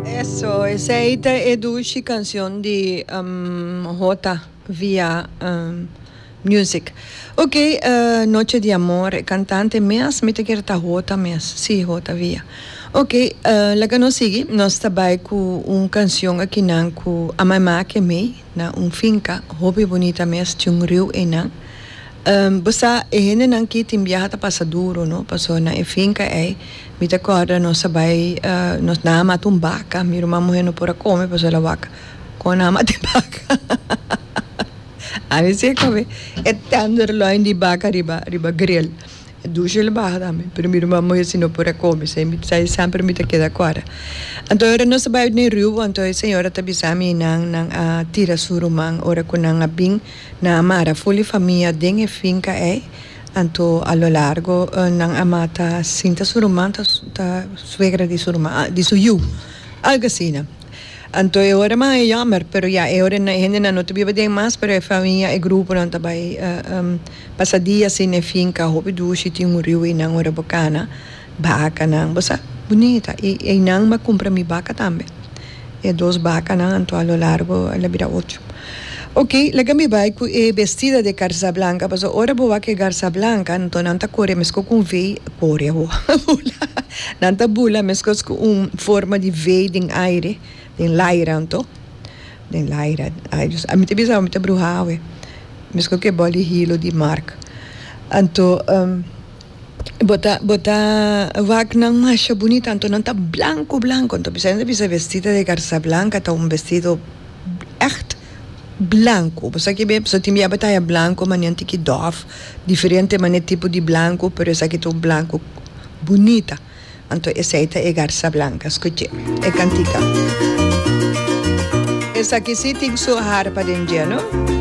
Eso, esei ta e dushi kancion di J. Via Music. Ok, Noche di Amor, e kantante mes mi ta kere ta J. mes, si, J. Via. Ok, laga nos sigui, nos ta bai ku un kancion akinan ku a mai make mi na un finka hopi bunita mes, ci un riu einan. Bo sa, e hendenan aki tin biaha ta pasa duru, no? Paso na e finka ei, mi ta kòrda nos a bai, nos nan a mata un baka, mi ruman muhé no por a kome paso el a waka. Kon nan a mata e baka? Hahahaha! Ami sek pabia e tenderloin di baka riba, riba gril. E dusha el a baha tambe, pero mi ruman muhé si no por a kome, esei mi, esei semper mi ta keda kòrda. Anto ora nos a bai den riu, anto e señora ta bisa mi, nan, nan a tira su ruman ora ku nan a bin. Nan a mara full e famia den e finka ey, anto a lo largo nan a mata sinta su ruman ta ta suegra di su ruman, di su yu, algo asina. Anto e ora mas e yammer, pero ya e ora e hendenan no ta biba den mas, pero e famia, e gruponan ta bay pasa dia asina e finka, hopi dushi tin muriu y nan ora bo cana. Bakanan, bo sa bunita, i einan m'a kumpra mi baka tambe. E dos bakanan anto a lo largo el a bira ocho. Ok, laga mi bai ku e bestida de garza blanka, paso ora bo wak e garza blanka anto nan ta kore meskos ku un vei, kore awo, bula, nan ta bula meskos ku un forma di vei den aire, den laira anto, den laira, ai Dios, a mi ta bisa bo mi ta bruhá awe, meskos ku e bòl di hilo di Mark. Anto. Bo ta bo ta wak nan masha bunita anto nan ta blanco blanco anto bisai nan ta bisa vestido de garza blanca ta un vestido echt blanco bo sa kibe pasobra tin biaba taya blanco mane anto ki dòf diferente mane tipo di blanco pero esaki ta un blanco bunita anto esei ta e garza blanca skuch'e e kantika esaki si tin su harpa den djeno.